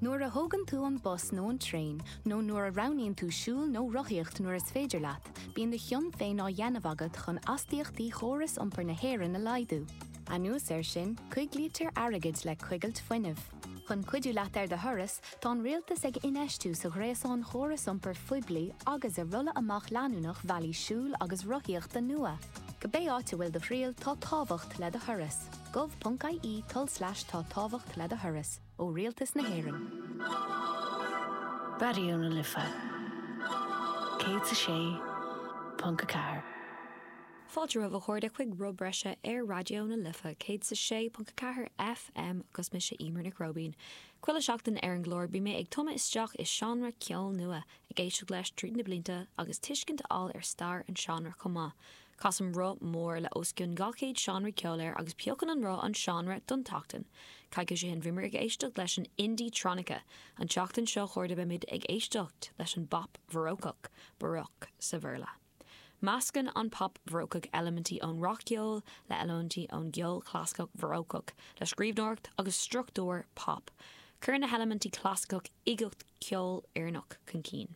Nuair a thógann tú an bus nó an traein, nó nuair a roghnaíonn tú siúl nó rothaíocht nuair is féidir leat, bíonn do chion féin á dheanamh agat chun astaíochtaí chóras iompair na hÉireann a laghdú. Anuas air sin, coiglítear airgead le coigilt fuinnimh. Chun cuidiú leat ar do thuras, tá an rialtas ag infheistiú sa ghréasán chóras iompair phoiblí agus i rolladh amach leanúnach bhealaí siúil agus rothaíochta nua. Cibé áit a bhfuil do thriall, tá tábhacht le do thuras. gov.ie tulslais tá tábhacht le do thuras. ó Rialtas na hÉireann. Raidió na Life 106.4. Fáilte romhaibh a chairde chuig rud breise ar Raidió na Life 106.4 FM agus mise Emer Nic Róibín. Chuile sheachtain ar an gclár beidh mé ag tumadh isteach i seánra ceoil nua, ag éisteacht leis tríd na blianta agus tuiscint a fháil ar stair an seánra chomh maith. Casann roth mór le os cionn 200 seánra ceoil air agus piocann an roth an seánra don tseachtain. Coicís ó shin bhíomar ag éisteacht leis an indie tronica. An tseachtain seo a chairde beimid ag éisteacht leis an bpop bharócach, baroque sa Bhéarla. Meascann an pop bharócach eilimintí ón rac-cheol le eilimintí ón gceol clasaiceach bharócach le scríbhneoireacht agus struchtúr pop. Cuireann na heilimintí clasaiceach uigeacht ceoil Éireannach chun cinn.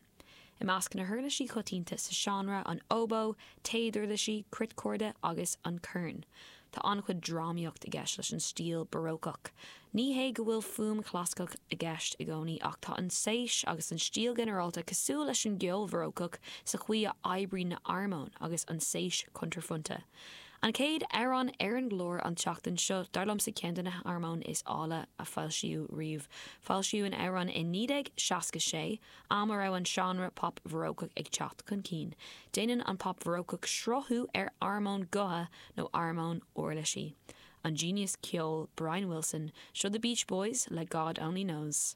I measc na huirlisí choitianta sa seánra, an óbó, téaduirlisí, cruitchorda agus an corn, tá an-chuid drámaíocht i gceist leis an stíl barócach. Ní hé go bhfuil fuaim chlasaiceach i gceist i gcónaí ach tá an séis agus an stíl ghinearálta cosúil leis an gceol bharócach sa chaoi a oibríonn na armóin agus an séis chuntraphointe. An chéad amhrán ar an gclár an tseachtain seo dar liomsa ceann de na harmóin is áille a foilsíodh riamh. Foilsíodh an amhrán in 1966. am a raibh an seánra pop bharócach ag teacht chun cinn. Déanann an pop bharócach sraithiú ar armóin gutha nó armóin uirlisí. An genius ceoil Brian Wilson, seo The Beach Boys le God Only Knows.